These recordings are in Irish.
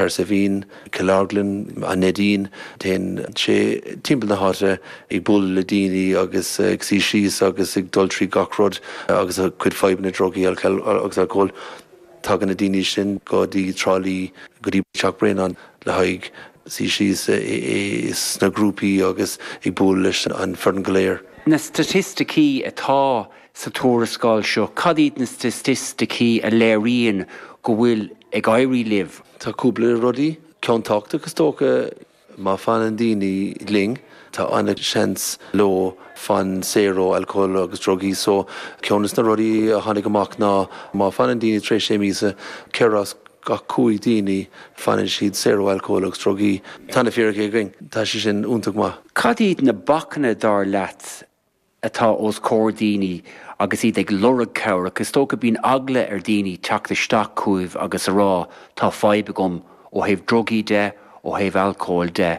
ansin Killorglin, An Neidín, téann sé timpeall na háite ag bualadh le daoine agus ag suí síos agus ag dul trí gach rud agus a gcuid fadhbanna drugaí agus alcóil. Tagann na daoine sin go dtí Trá Lí, go dtí Teach Bréanainn le haghaidh suí síos sna grúpaí agus ag bualadh leis an foireann go léir. Na staitisticí atá. sa tuarascáil seo, cad iad na staitisticí a léiríonn go bhfuil ag éirí libh? Tá cúpla rudaí ceann tábhachtach, is dócha. Má fanann daoine linn, tá an-seans leo fan saor ó alcól agus drugaí. So, ceann de na rudaí a tháinig amach ná má fanann daoine tar éis sé míosa, ceithre as gach cúig daoine fanann siad saor ó alcól agus drugaí. Tá na fíricí againn. Tá sé sin iontach maith. Cad iad na bacanna, dar leat? atá os comhair daoine agus iad ag lorg cabhrach, is dócha bíonn eagla ar daoine teacht isteach chugaibh agus a rá tá fadhb agam ó thaobh drugaí de, ó thaobh alcóil de.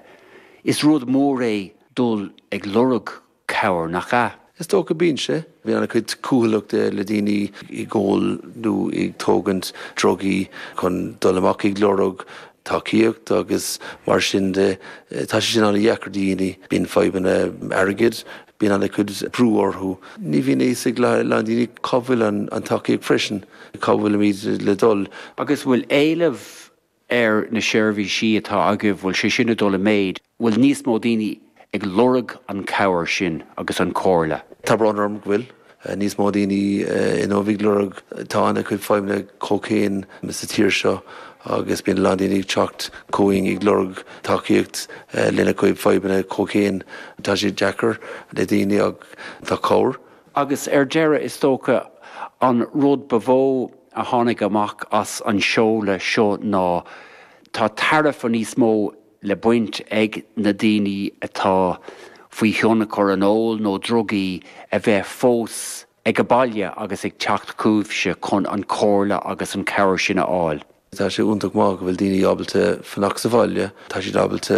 Is rud mór é dul ag lorg cabhair, nach ea? Is dócha, bíonn sé. Bíonn an-chuid cúthaileachta le daoine ag ól nó ag tógaint drugaí chun dul amach ag lorg tacaíocht agus mar sin de. Tá sé sin an-dheacair do dhaoine. Bíonn fadhbanna airgid, bíonn an-chuid brú orthu. Ní bhíonn a fhios ag a lán daoine cá bhfuil an tacaíocht freisin, cá bhfuilimid le dul. Agus bhfuil éileamh ar na seirbhísí atá agaibh, bhfuil sé sin ag dul i méid? bhfuil níos mó daoine ag lorg an cabhair sin agus an comhairle? Tá brón orm go bhfuil níos mó daoine inniu ag lorg, tá an-chuid fadhbanna cóicéin sa tír seo agus bíonn a lán daoine ag teacht chugainn ag lorg tacaíocht lena gcuid fadhbanna cóicéin. Tá sé deacair le daoine ach tá cabhair. Agus ar deireadh, is dócha an rud ba mhó a tháinig amach as an seoladh seo ná, tá tairbhe níos mó le baint ag na daoine atá faoi thionchar an óil nó drugaí a bheith fós ag a baile agus ag teacht chugaibhse chun an chomhairle agus an chabhair sin a fháil. Tá sé iontach maith go bhfuil daoine ábalta fanacht sa bhaile, tá siad ábalta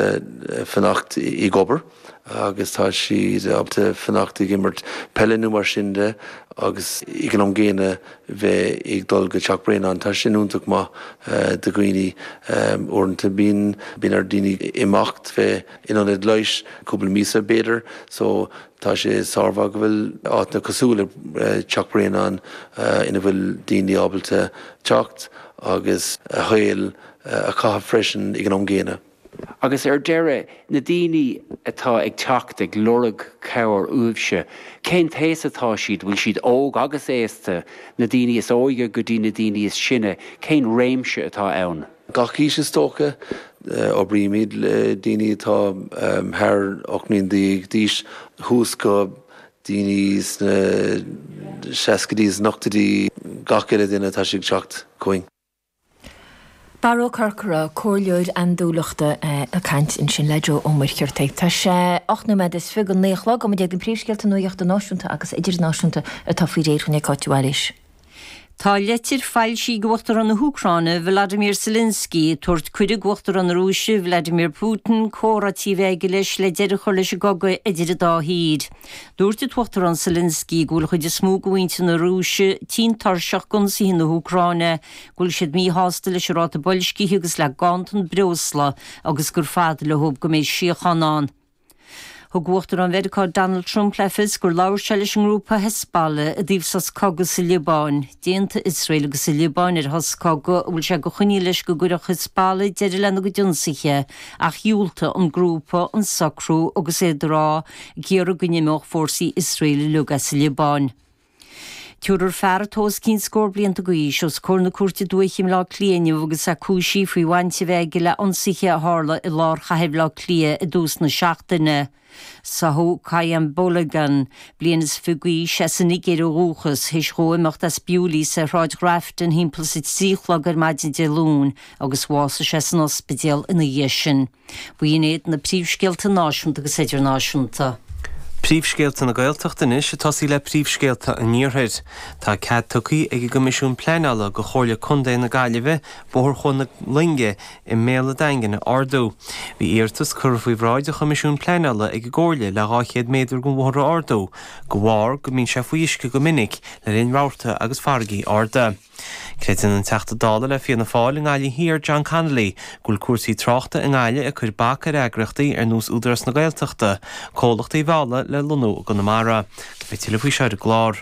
fanacht ag obair, agus tá siad ábalta fanacht ag imirt peile nó mar sin de agus ag an am gcéanna bheith ag dul go Teach Bréanainn. Tá sin iontach maith do dhaoine. Uaireanta bíonn bíonn ar daoine imeacht bheith in ionad leighis cúpla míosa b'fhéidir so tá sé sármhaith go bhfuil áiteanna cosúil le Teach Bréanainn ina bhfuil daoine ábalta teacht agus a shaol a chaitheamh freisin ag an am gcéanna. Agus ar deireadh, na daoine atá ag teacht ag lorg cabhair uaibhse, cén aois atá siad, bhfuil siad óg agus aosta, na daoine is óige go dtí na daoine is sine, cén réimse atá ann? Gach aois is dócha. Oibrímid le daoine atá thar ocht mbliana déag d'aois suas go daoine sna seascaidí, sna hochtóidí, gach uile duine atá ag teacht chugainn. Barra Ó Corcora, Comhairleoir Andúileachta ag caint ansin le Joe Ó Muircheartaigh. Tá sé ocht nóiméad is fiche go naoi a chlog, go mb'iad na príomhscéalta nuaíochta náisiúnta agus idirnáisiúnta atá faoi réir dhúinn ag Cáit Mhaoil is. Tá leitir foilsithe ag Uachtarán na hÚcráine, Volodymyr Zelensky, ag tabhairt cuireadh go Uachtarán na Rúise, Vladimir Putin, comhráití a bheith aige leis le deireadh a chur leis an gcogadh idir an dá thír. Dúirt an tUachtarán Zelensky go bhfuil an chuid is mó de mhuintir na Rúise tinn tuirseach d'ionsaithe na hÚcráine, go bhfuil siad míshásta leis an ráta boilscithe agus le ganntan breosla agus gur fada leo go mbeidh síochán ann. Thug Uachtarán Mheiriceá Donald Trump le fios gur labhair sé leis an ngrúpa Hezbollah i dtaobh sos cogaidh sa Liobáin. D'aontaigh Iosrael agus an Liobáin ar shos cogaidh, a bhfuil sé de choinníoll leis go gcuirfeadh Hezbollah deireadh lena gcuid ionsaithe ach dhiúltaigh an grúpa don socrú agus iad ag iarraidh iarraidh go n-imeodh fórsaí Iosraeil uilig as an Liobáin. Tabharfar fear atá os cionn scór blianta d'aois os comhair na cúirte dúiche i mBleá Cliath inniu agus é cúisithe faoi bhaint a bheith aige le hionsaithe a tharla i lár chathair Bhleá Cliath i dtús na seachtaine. Sádh Qayyum Balogun, bliain is fiche d'aois, as an Nigéir ó dhúchas, théis dhó imeacht as Bewleys ar Shráid Ghrafton thimpeall is a trí a chlog ar maidin Dé Luain agus bhásaigh sé san ospidéal ina dhiaidh sin. B'in iad na príomhscéalta náisiúnta agus idirnáisiúnta. Príomhscéalta na Gaeltachta anois ag tosaí le príomhscéalta an Iarthair. Tá cead tugtha ag an gCoimisiún Pleanála go Chomhairle Contae na Gaillimhe Bóthar Chuan na Loinge i mBéal an Daingin a ardú. Bhí iarratas curtha faoi bhráid an Choimisiúin Pleanála ag an gComhairle le 200 méadar den bhóthar a ardú de bharr go mbíonn sé faoi uisce go minic le linn rabharta agus farraigí arda. Creideann an Teachta Dála le Fianna Fáil i nGaillimh Thiar, John Connolly, go bhfuil cúrsaí tráchta i nGaillimh ag cur bac ar eagraíochtaí ar nós Údarás na Gaeltachta comhlachtaí a mhealladh le lonnú i gConamara. Beidh tuilleadh faoi seo ar an gclár.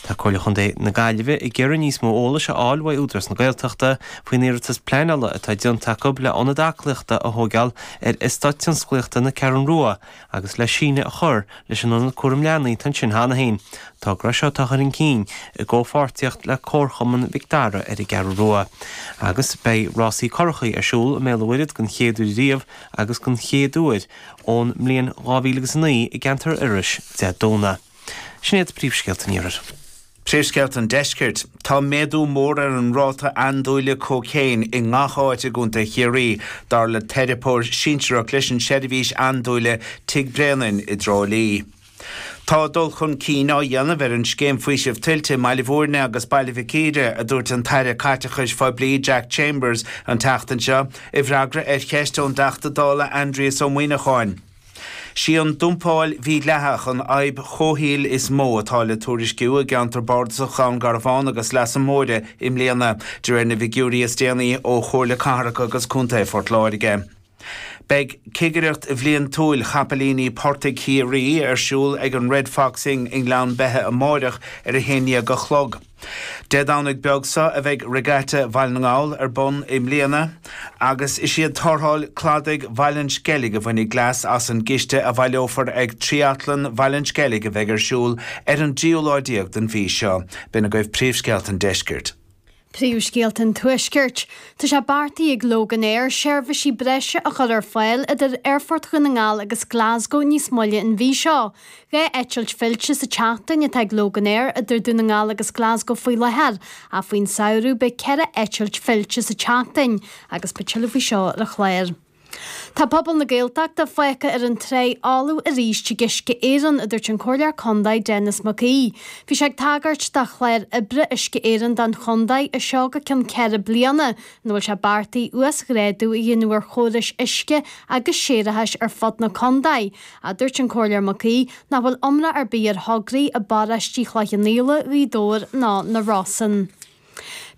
Tá Comhairle Chontae na Gaillimhe ag iarraidh níos mó eolais a fháil uaidh Údarás na Gaeltachta faoin iarratas pleanála atá déanta acu le ionad aclaíochta a thóigeáil ar Eastát Tionsclaíochta na Ceathrún Rua, agus le síneadh a chur leis an Ionad Cúram Leanaí atá ansin cheana féin, togra seo atá á chur chun cinn i gcomhpháirtíocht le Comharchumann Mhic Dara ar an gCeathrú Rua, agus beidh rásaí currachaí ar siúl i mBéal an Mhuirthead den chéad uair ariamh agus den chéad uair ón mbliain dhá mhíle agus a naoi i gceantar Iorrais, Dé Domhnaigh. Sin iad príomhscéalta an iarthair. Príomhscéalta an deiscirt. Tá méadú mór ar an ráta andúile cóicéin i ngach áit i gContae Chiarraí, dar le teiripeoir sinsearach leis an tseirbhís andúile Tigh Bréanainn i dTrá Lí. Tá dul chun cinn á dhéanamh ar an Scéim Faoisimh Tuilte i mBaile Bhúirne agus Baile Mhic Íre, a dúirt an tAire Caiteachais Phoiblí Jack Chambers an tseachtain seo, i bhfreagra ar cheist ón dTeachta Dála Aindrias Ó Muíneacháin. Sí an dumpáil mhídhleathach an fhadhb chomhshaoil is mó atá le tuairisciú i gceantar Bardasach Dhún Garbhán agus Leasa Móire i mbliana, de réir na bhfigiúirí is déanaí ó Chomhairle Cathrach agus Contae Phort Láirge. Beidh cigireacht bhliantúil chapaillíní portaigh Chiarraí ar siúl ag an Red Fox Inn i nGleann Beithe amárach ar a haon dhéag a chlog. Dé Domhnaigh beag seo a bheidh Regatta Bhaile na nGall ar bun i mbliana agus is iad Tarrtháil Cladaigh Bhaile an Sceilg a bhainfidh leas as an gciste a bhaileofar ag Tríatlan Bhaile an Sceilg a bheidh ar siúl ar an dtríú lá déag den mhí seo. B'in agaibh príomhscéalta an deiscirt. Príomhscéalta an tuaiscirt. Tá sé beartaithe ag Loganair seirbhísí breise a chur ar fáil idir Aerfort Dhún na nGall agus Glasgow níos moille an mhí seo. Dhá eitilt fillte sa tseachtain atá ag Logan Air idir Dún na nGall agus Glasgow faoi láthair, ach faoin samhradh beidh ceithre eitilt fillte sa tseachtain agus beidh tuilleadh faoi seo ar an chlár. Tá pobal na Gaeltachta fágtha ar an tráigh fholamh arís ag Uisce Éireann, a dúirt an Comhairleoir Contae Denis Mac Aoidh. Bhí sé ag tagairt do chlár oibre Uisce Éireann don chontae as seo go cionn ceithre bliana, ina bhfuil sé beartaithe uasghrádú a dhéanamh ar chórais uisce agus séarachais ar fud na contae, a dúirt an Comhairleoir Mac Aoidh, nach bhfuil iomrá ar bith ar thograí i bparóistí Chloich Cheann Fhaola, Ghaoth Dobhair ná na Rosann.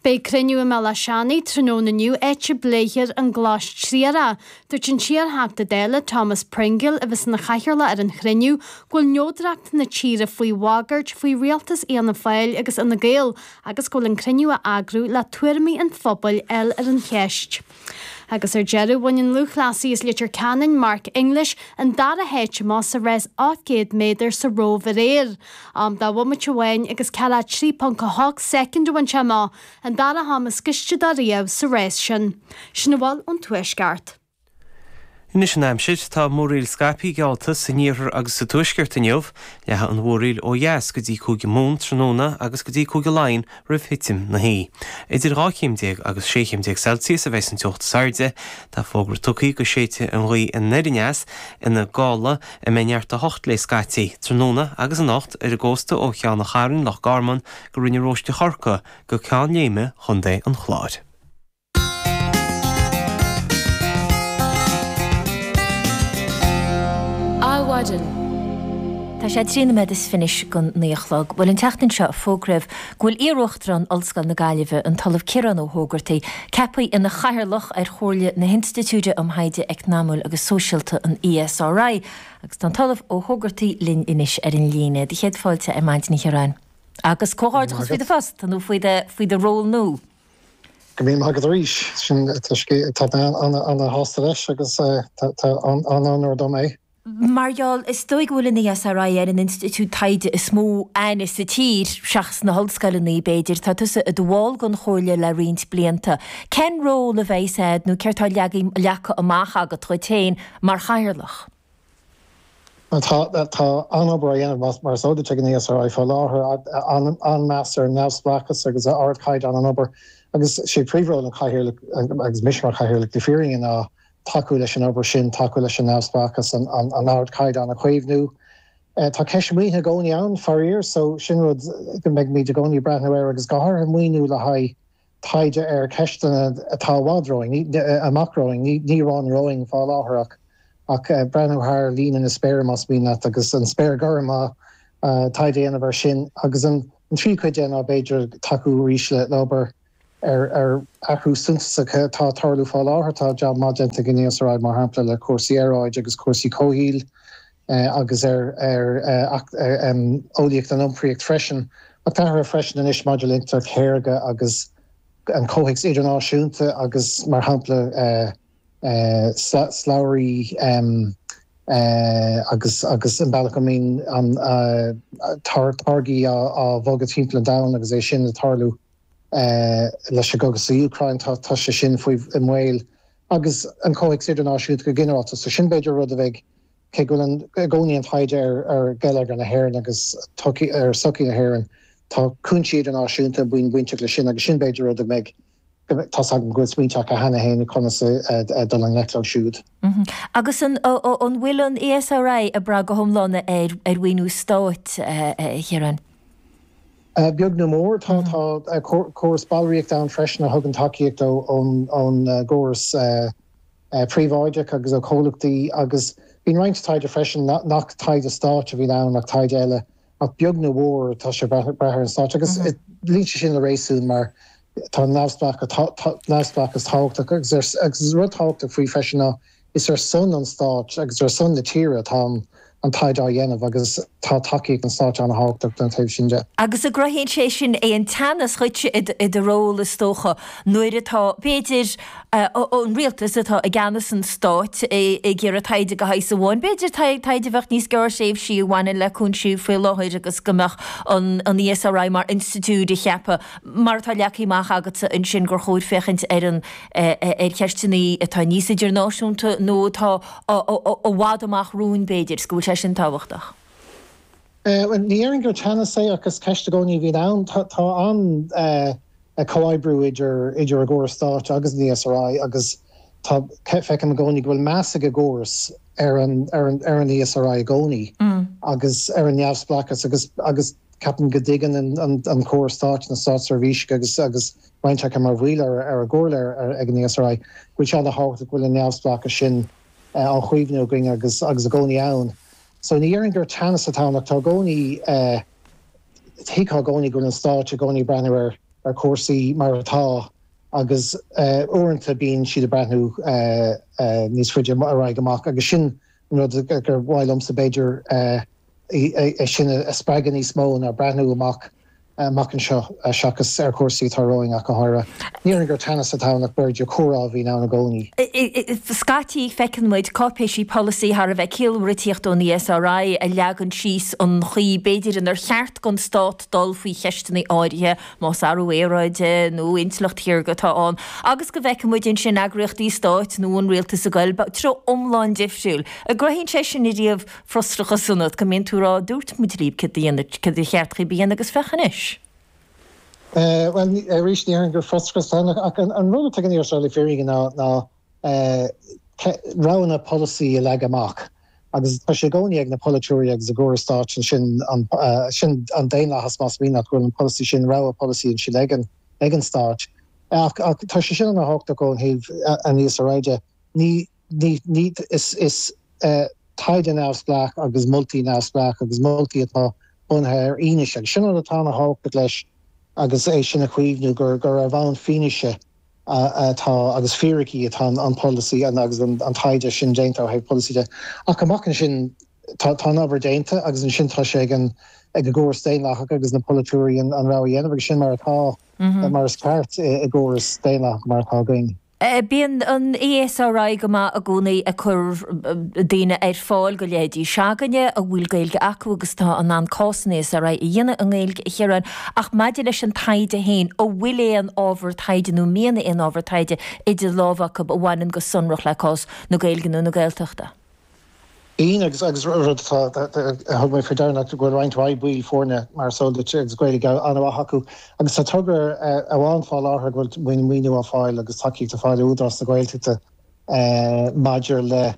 Beidh cruinniú i mBéal Átha Seanaidh tráthnóna inniu áit a bpléifear an glas triarach. Dúirt an t-iar-Theachta Dála Thomas Pringle, a bheas ina chathaoirleach ar an chruinniú, go bhfuil neodracht na tíre faoi bhagairt faoi rialtas Fhianna Fáil agus Fhine Gael agus go bhfuil an cruinniú á eagrú le tuairimí an phobail a fháil ar an cheist. Agus ar deireadh bhain an lúthchleasaí as Leitir Ceanainn, Mark English, an dara háit amach sa rás 800 méadar sa Róimh aréir. Am de bhomaite amháin agus 43.8 soicind a bhain sé amach, an dara ham is gaiste dá riabh sa rás sin. Sin a bhfuil ón Tuaisceart. Anois an aimsir, tá múraíl scaipthe geallta san iarthar agus sa tuaisceart inniu. Leathfaidh an mhúraíl ó dheas go dtí Cúige Mumhan tráthnóna agus go dtí Cúige Laighean roimh thitim na hoíche. Idir dhá chéim déag agus sé chéim déag Celsius a bheas an teocht is airde. Tá fógra tugtha go séidfidh an ghaoth anoir aneas, ina gála, a mbeidh neart a hocht léi scaití, tráthnóna agus anocht ar an gcósta ó Cheann an Chairn, Loch Garman go Rinn an Róistigh Chorcaí go Ceann Léime, Chontae an Chláir. Adhmhaidin. Tá sé trí noiméad is fiche go naoi a chlog. Bhuel, an tseachtain seo fógraíodh go bhfuil iaruachtarán Ollscoil na Gaillimhe, an tOllamh Ciarán Ó hÓgartaigh, ceaptha ina chathaoirleach ar chomhairle na hInstitiúide um Thaighde Eacnamúil agus Sóisialta, an ESRI, agus tá an tOllamh Ó hÓgartaigh linn anois ar an líne. Do chéad fáilte ar Adhmhaidin, a Chiaráin. Agus comhghairdeachas faoi do phost nó faoi do ról nú. Go raibh maith agat arís. Sea, tá mé an-sásta leis agus an-onóir dom é. Mar gheall, is dóigh go bhfuil an ESRI ar an institiúid taighde is mó aithne sa tír, seachas na hollscoileanna, b'fhéidir. Tá tusa i do bhall den chomhairle le roinnt blianta. Cén ról a bheidh's agat nó céard tá leagtha amach agat dhuit féin mar chathaoirleach? Tá an-obair á dhéanamh, mar is eol duit, ag an ESRI faoi láthair, an-mheas ar an neamhspleáchas agus ar ardchaighdeán an obair agus 'sé príomhról an Chathaoirligh, agus mise mar Chathaoirleach, le fírinne ná tacú leis an obair sin, tacú leis an neamhspleáchas, an ardchaighdeán a chaomhnú. Tá ceist an mhaoinithe i gcónaí ann, faraor, so sin rud go mbeidh muid i gcónaí ag breathnú air agus go háirithe maoiniú le haghaidh taighde ar cheisteanna atá i bhfad romhainn, amach romhainn, ní, ní romhainn, romhainn faoi láthair ach, ach breathnú thar líne na spéire más mian leat agus an spéir gorm á, á, taighde a dhéanamh air sin. Agus an, an tríú cuid de ná b'fhéidir tacú arís le, le obair ar, ar athrú suntasach atá ag tarlú faoi láthair. Tá jab maith déanta ag an ESRI mar shampla le cúrsaí aeráide agus cúrsaí comhshaoil agus ar eolaíocht an iompraíocht freisin, ach tá athrú freisin anois maidir le intleacht shaorga agus an comhthéacs idirnáisiúnta agus, mar shampla, slabhraí agus an bealach a mbíonn táirgí á bhogadh timpeall an domhain agus a bhfuil ag tarlú leis an gcogadh sa Úcráin, tá sé sin i mbaol, agus an comhthéacs idirnáisiúnta go ginearálta. So sin b'fhéidir rud a bheidh Cé go bhfuil i gcónaí an taighde ar gheilleagar na hÉireann agus ar sochaí na hÉireann, tá cúinsí idirnáisiúnta bainteach leis sin agus sin, b'fhéidir, rud a mbeidh, tá's agam go bhfuil smaointe acu cheana féin ar conas a dhul i ngleic leo siúd. Agus an bhfuil an ESRI ag brath go hiomlán ar mhaoiniú stáit, a Chiaráin? Beag nó mhór. Tá córas ballraíochta ann freisin a thugann tacaíocht ón gcóras. príobháideach agus ó chomhlachtaí agus bíonn roinnt taighde freisin nach taighde stáit a bhíonn ann ach taighde eile ach beag nó mhór tá sé ag brath ar an stát agus luíonn sé sin le réasún mar tá neamhspleáchas tábhachtach agus rud tábhachtach faoi freisin ná is ar son an stáit agus ar son na tíre atá an an taighde á dhéanamh agus tá tacaíocht an stáit an-thábhachtach don taobh sin de. Agus an gcruthaíonn sé sin aon teannas dhuitse i do ról, is dócha, nuair atá, b'fhéidir, an rialtas, atá i gceannas an stáit, ag iarraidh taighde de shaghas amháin, b'fhéidir taighde a bheadh níos gearrthréimhsí a bhaineann le cúinsí faoi láthair agus go mbeadh an ESRI mar institiúid ag ceapadh, mar atá leagtha amach agatsa ansin, gur chóir féachaint ar cheisteanna atá níos idirnáisiúnta nó atá. i bhfad amach romhainn, b'fhéidir, is go bhfuil sé sin tábhachtach. Bhuel, ní dhéarfainn gur teannas é, ach is ceist i gcónaí a bhíonn ann. Tá an-chomhoibriú idir an gcóras stáit agus an ESRI agus tá, feicim i gcónaí go bhfuil meas ag an gcóras ar an ESRI i gcónaí agus ar a neamhspleáchas agus ceapaim go dtuigeann an chóras stáit, na státseirbhísigh agus. roinnt acu mar bhaill ar an gComhairle ar ag an ESRI, go bhfuil sé ana thábhachtach go bhfuil an neamhspleáchas sin á chaomhnú againn agus agus i gcónaí ann. So ní dhéarfainn gur teannas atá ann ach tá i gcónaí eh thuigtheá i gcónaí go bhfuil an Stát i gcónaí ag breathnú ar ar chúrsaí mar atá agus eh uaireanta bíonn siad ag breathnú eh eh níos faide ar aghaidh amach agus sin an rud gur mhaith liomsa b'fhéidir eh é sin a spreagadh níos mó ná breathnú amach anseo, seachas ar chúrsaí atá romhainn ach go háirithe. Ní déarfainn gur teannas atá ann ach b'fhéidir comhrá a bhíonn ann i gcónaí. Scaití feiceann muid cáipéisí polasaí thar a bheith ciallmhar ag tíocht ón ESRI a leagann síos an chaoi b'fhéidir inar cheart don stát dul faoi cheisteanna áirithe, más athrú aeráide nó intleacht shaorga atá ann, agus go bhfeiceann muid ansin eagraíochtaí stáit nó an rialtas ag goil treo iomlán difriúil. An gcruthaíonn sé sin riamh? frustrachas ionat go mbíonn tú ag rá 'dúirt muid libh céard a dhéanamh, céard ba cheart daoibh a dhéanamh agus féach anois! Bhuel, arís, ní dhéarfainn gur frustrachas é, ach an rud atá ag an ESRI i bhfírinne ná roghanna polasaí a leagan amach agus tá sé i gcónaí ag na polaiteoirí agus an gcóras stáit ansin, sin an daonlathas más mian leat, go bhfuil an polasaí sin, rogha polasaí ansin ag an stát ach tá sé sin ana thábhachtach ó thaobh an ESRI de. Ní. Ní, is taighde neamhspleách agus moltaí neamhspleách agus moltaí atá bunaithe ar fhianaise agus sin an, atá ana thábhacht leis agus é sin a chaomhnú, gur ar bhonn fianaise atá agus fíricí atá an polasaí agus an taighde sin déanta ó thaobh polasaí de. Ach amach ansin, tá an obair déanta agus ansin tá sé ag an gcóras daonlathach agus na polaiteoirí an rogha a dhéanamh agus sin mar atá, mar is ceart i gcóras daonlathach mar atá againn. Bíonn an ESRI go maith i gcónaí ag cur daoine ar fáil do leithéidí s'againne a bhfuil Gaeilge acu agus atá in ann cás an ESRI a dhéanamh i nGaeilge, ar Éirinn, ach maidir leis an taighde féin, an bhfuil aon ábhar taighde nó mian aon ábhar taighde idir lámha agaibh a bhaineann go sonrach le cás na Gaeilge nó na Gaeltachta? Agus rud atá, a thug mé faoi deara ná go bhfuil roinnt mhaith baill foirne, mar is eol duit, agus Gaeilge an-mhaith acu. Agus tá togra amháin fá láthair ag a bhfuil maoiniú á fáil agus tacaíocht á fáil ó Údarás na Gaeltachta maidir le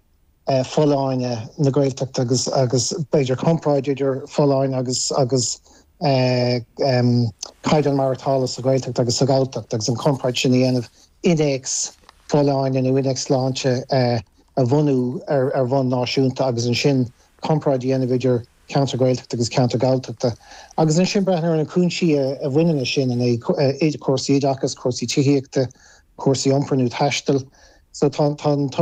folláine na Gaeltachta agus agus b'fhéidir comparáid idir folláine agus agus caighdeán maireachtála sa Ghaeltacht agus sa Ghalltacht agus an chomparáid sin a dhéanamh innéacs folláine nó innéacs sláinte a bhunú ar bhonn náisiúnta agus ansin comparáid a dhéanamh idir ceantair Ghaeltachta agus ceantair Galltachta agus ansin breathnú ar na cúinsí a bhaineann leis sin, an é cúrsaí oideachais, cúrsaí tithíochta, cúrsaí iompair nó taistil. So tá an togra.